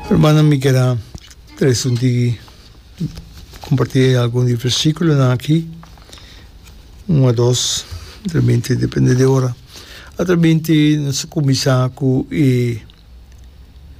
Hermananan, mi keda tres un tigi kompartí algun di e versíkulonan akí, un a dos, tramente depende di e ora. Atramente nos ta kuminsá ku e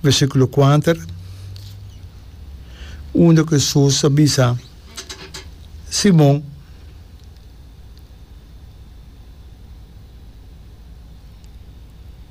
versíkulo kuater, unda ku Hesus a bisa Simon,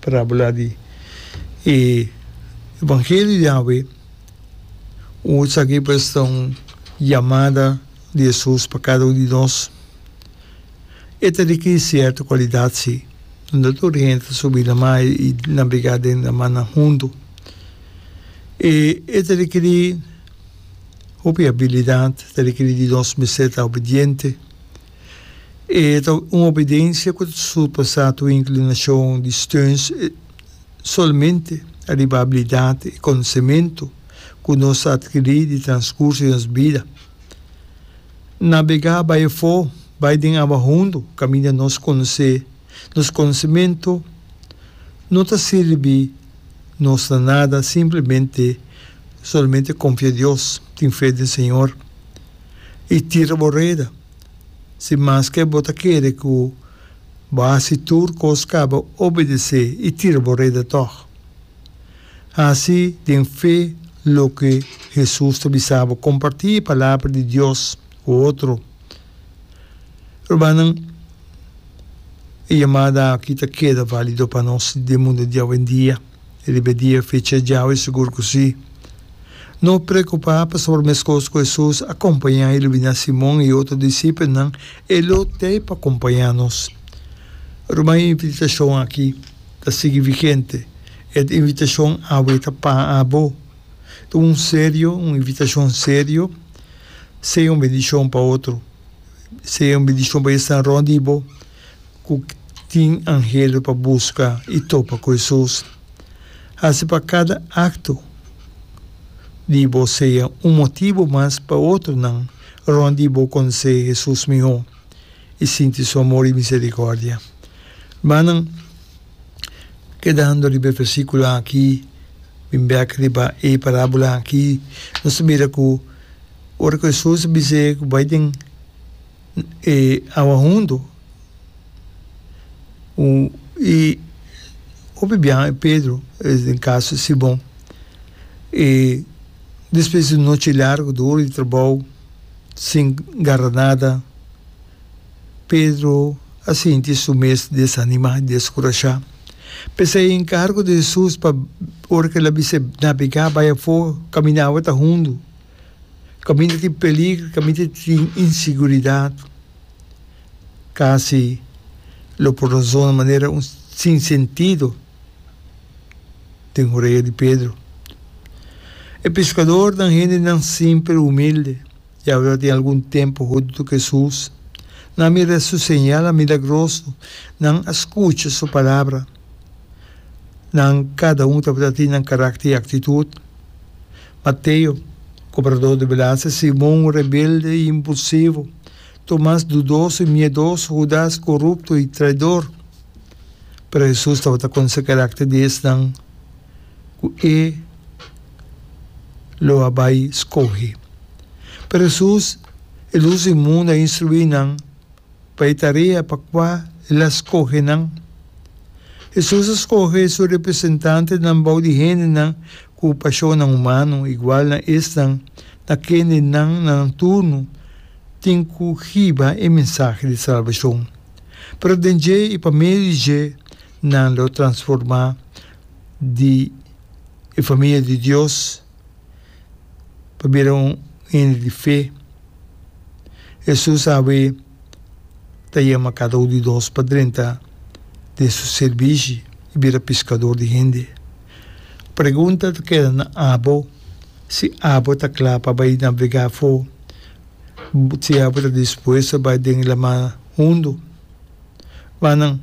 Parabla di e evangelio di Yahwe ku esaki pues ta un yamada di Jesus pa kada un di nos. E ta riki di sierto kualidat si, unda tur hende ta subi na mar i nabiga den na marnan huntu. I e ta rikiri hopi abilidat, ta rikiri di nos mester ta obediente. E ta un obedensia ku ta surpasá tur inklinashon di Stearns solamente ariba abilidat i konosementu ku nos a atkirí di transkurso di nos bida. Nabegá bai afó, bai den awa hundu kaminda nos konosé nos konosementu no ta sirbi nos na nada, simplemente solamente konfia Dios, tin fe den Señor. i tira bo reda. Si maske bo ta kere ku bo hasi tur kos kaba obedesé i tira bo reda tòg. Hasi den fe loke Hesus ta bisa bo. Kompartí e palabra di Dios ku otro. Rumannan, e yamada aki ta keda válido pa nos den mundu di awendia. E riba e dia fecha djau i sigur ku sí. No preokupá pasobra meskos ku Hesus a kompañá i lubiná Simon i otro disipelnan, e lo t'ei pa kompañá nos. Ruma e invitashon akí ta sigui vigente, e invitashon awe ta pa abo. Ta un serio, un invitashon serio, Sea un bendishon pa otro. Sea un bendishon pa esnan rònt di bo. ku tin angelnan pa buska i topa ku Hesus. Hasi pa kada akto di bo sea un motibu mas pa otronan rònt di bo konosé Hesus mihó i sinti Su amor i miserikòrdia. Rumannan, kedando riba e versíkulo akí, bin bèk riba e parábula akí, nos ta mira ku ora ku Hesus a bis'é ku bai den, E awa hundu ku e hopi biaha e Pedro es den kaso Simon. E despues di un nochi largu di ora di trabou sin garra nada, Pedro a sinti su mes desanimá, deskurashá. P'esei e enkargo di Hesus pa ora ku el a bisa e nabegá bai afó, kaminda awa ta hundu, Caminda tin peligro, caminda tin inseguridad, casi lo por razona manera un sin sentido den oreya di Pedro. E pescadornan, hendenan simple, humilde, yawe tin algun tempo hunto cu Jesus, nan a mira su señal milagroso, nan a scucha su palabra. Nan kada un tabata tin nan karakter i aktitut. Mateo, kobradó di belastia, Simon, rebelde i impulsivo, Tomas, dudoso i miedoso, Hudas, korupto i traidor. Pero Hesus tabata konose karakter di esnan ku e lo a bai skohe. Pero Hesus, el usa e mundu, a instruí nan. pa e tarea pa kua el a skohe nan. Hesus a skohe su representantenan bou di hendenan ku pashonnan humano, igual na esnan na kende nan na nan turno tin ku hiba e mensahe di salbashon. Pero den dje i pa medio di dje nan lo transformá di e famia di Dios. pa bira un hende di fe. Hesus awe ta yama kada un di nos pa drenta den su sirbishi i bira piskador di hende. Pregunta ta keda na abo, Si abo ta kla pa bai nabrigá afó, si abo ta dispuesto bai den e laman hundu? Mannan.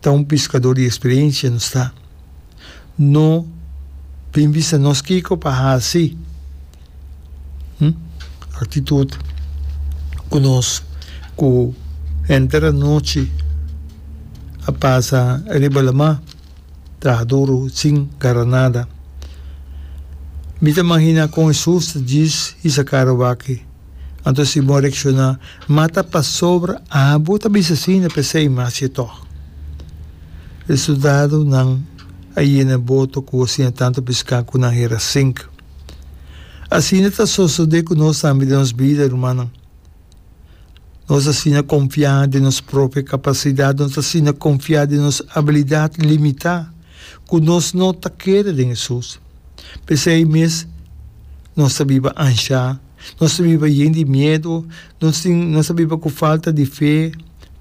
Ta un piskadó di eksperiensia nos ta. No bin bisa nos kiko pa hasi, hm, aktitut ku nos ku henter anochi a pasa riba lamá traha duru sin gara nada. Mi ta maginá kon e sus ta djis hisa karo wak ei. Anto si bo reakshoná mata pasobra abo ta bisa asina p'esei mas ye tòg. Resultadonan a yena bo tokó asina tantu piská ku nan hera sink. Asina ta sosodé ku nos tambe den nos bida, rumannan. Nos asina konfiá den nos propio kapasidat, nos asina konfiá den nos abilidat limitá ku nos no ta keda den Hesus. P'esei mes nos ta biba anshá. Nos ta biba yen di miedu, nos tin nos ta biba ku falta di fe,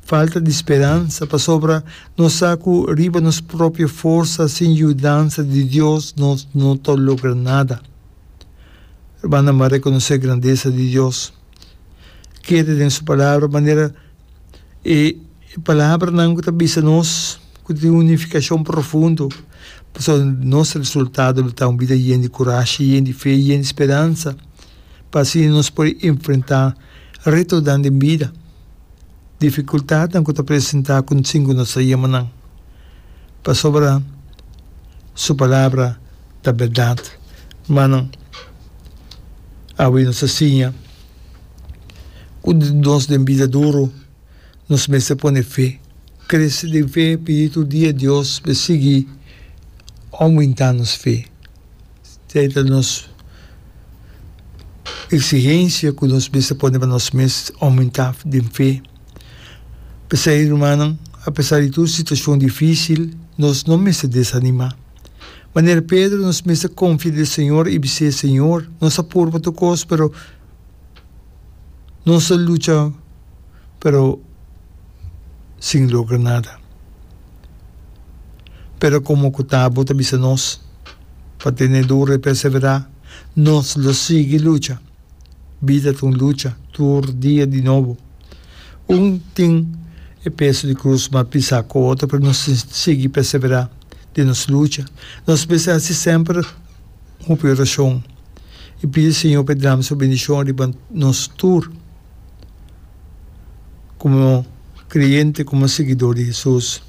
falta di speransa, pasobra nos sa ku riba nos propio forsa sin yudansa di Dios nos no ta logra nada. Hermananan m'a rekonosé grandesa di Dios. Keda den su Palabra manera. e palabranan ku ta bisa nos ku tin un nifikashon profundo, pasobra nos resultado lo ta un bida yen di kurashi, yen di fe, yen di speransa, pa asina nos por enfrentá retonan den bida, difikultatnan ku ta presentá konsin ku nos ta yama nan, pasobra Su Palabra ta bèrdat. Manan, awe nos ta siña. Ku nos den bida duru, nos mester pone fe. Krese den fe, pidi tur dia Dios pa e sigui oumentá nos fe. Esei ta nos eksigensia ku nos mester pone pa nos mes, oumentá den fe. P'esei, rumannan, apesar di tur situashon difísil, nos no mester desanimá. Manera Pedro, nos mester konfia den Señor i bis'é, Señor, nos a puru pa tur kos, pero, Nos a lucha pero sin logra nada. Pero como cu Tabo ta bisa nos, pa tene duro y persevera, nos lo sigui lucha. Bida ta un lucha tur dia di nobo. Un tin e peso di cruz mas pisa cu otro pero nos tin sigui persevera den nos lucha. Nos mester haci semper. hopi orashon i pidi Señor pa e drama su bendishon riba nos tur komo kreyente, komo siguidor di Hesus.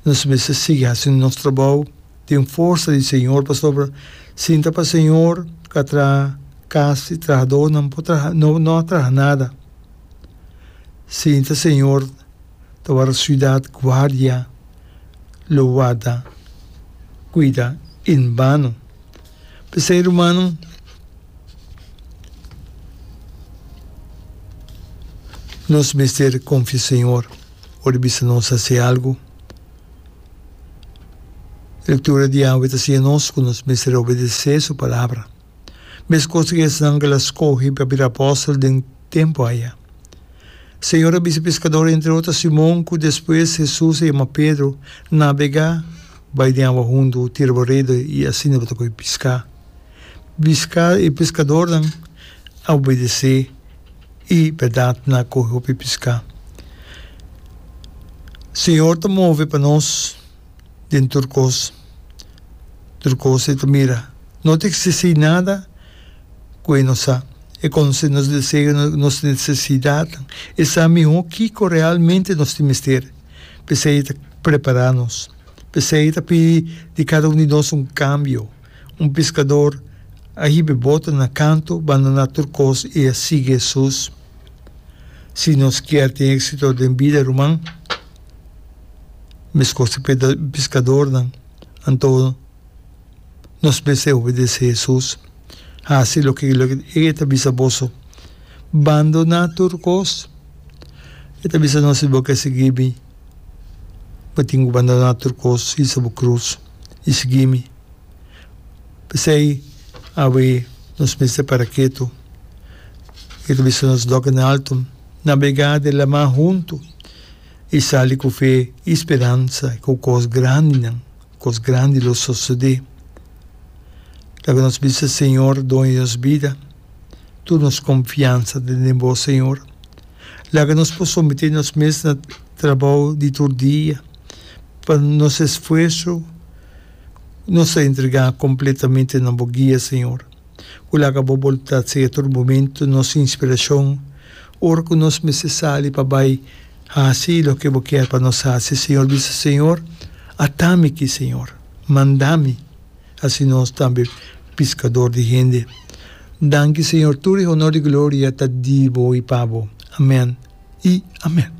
Nos mester sigui hasi nos trabou den forsa di Señor pasobra sinta pa Señor ka traha kas i trahadó nan por traha no no a traha nada. Sinta Señor ta wòrdu siudat guardia. lo warda cuida en bano. P'esey, rumannan, nos mester confia Señor ora e bisa nos haci algo. Lectura diawe ta siña nos cu nos mester obedece Su Palabra. Mescos tin esnan cu el a scogi pa bira apóstol den tempu aya. Señor a bisa pescador, entre otro Simon, cu despues Jesús a yama Pedro, Nabega, bai den awa huntu, tira bo rede y asina bo ta koi pisca. Pisca e pescadornan a obedece y berdad nan a cogi hopi pisca. Señor ta move pa nos den tur cos. tur cos e ta mira. No ta extisi nada cu e no sa. E conoce nos deseo, nos necesidadnan. E sa miho kico realmente nos tin mester. P'esey e ta prepara nos. P'esey e ta pidi di cada un di nos un cambio. Un piscador a hibe bota na canto, bandona tur cos y a sigui Hesus. Si nos kier tin exito den bida, ruman, Mescos di pescadornan, anto nos mester obedece Jesús. Haci loke E ta bisa boso. Bandona tur cos. E ta bisa nos, si bo ke sigui mi, bo tin cu bandona tur cos, hisa bo cruz y sigui mi. P'esey awe nos mester para ketu. E ta bisa nos, Doc, na alto, nabega de laman hunto. I sali ku fe i speransa ku kos grandinan, kos grandi lo sosodé. Tabata nos bisa, Señor, Doño di nos bida, tur nos konfiansa ta den Bo, Señor. Laga nos por someté nos mes na trabou di tur dia, pa nos esfuerso nos a entregá kompletamente na Bo guia, Señor. ku laga bo boluntat seya tur momentu nos inspirashon ora ku nos mester sali pa bai hasi loke bo kier pa nos hasi. Señor bisa, Señor, ata mi aki, Señor, manda mi. Hasi nos tambe piskador di hende. Danki, Señor, tur e honor i gloria ta di bo i pa bo. Amen i amen.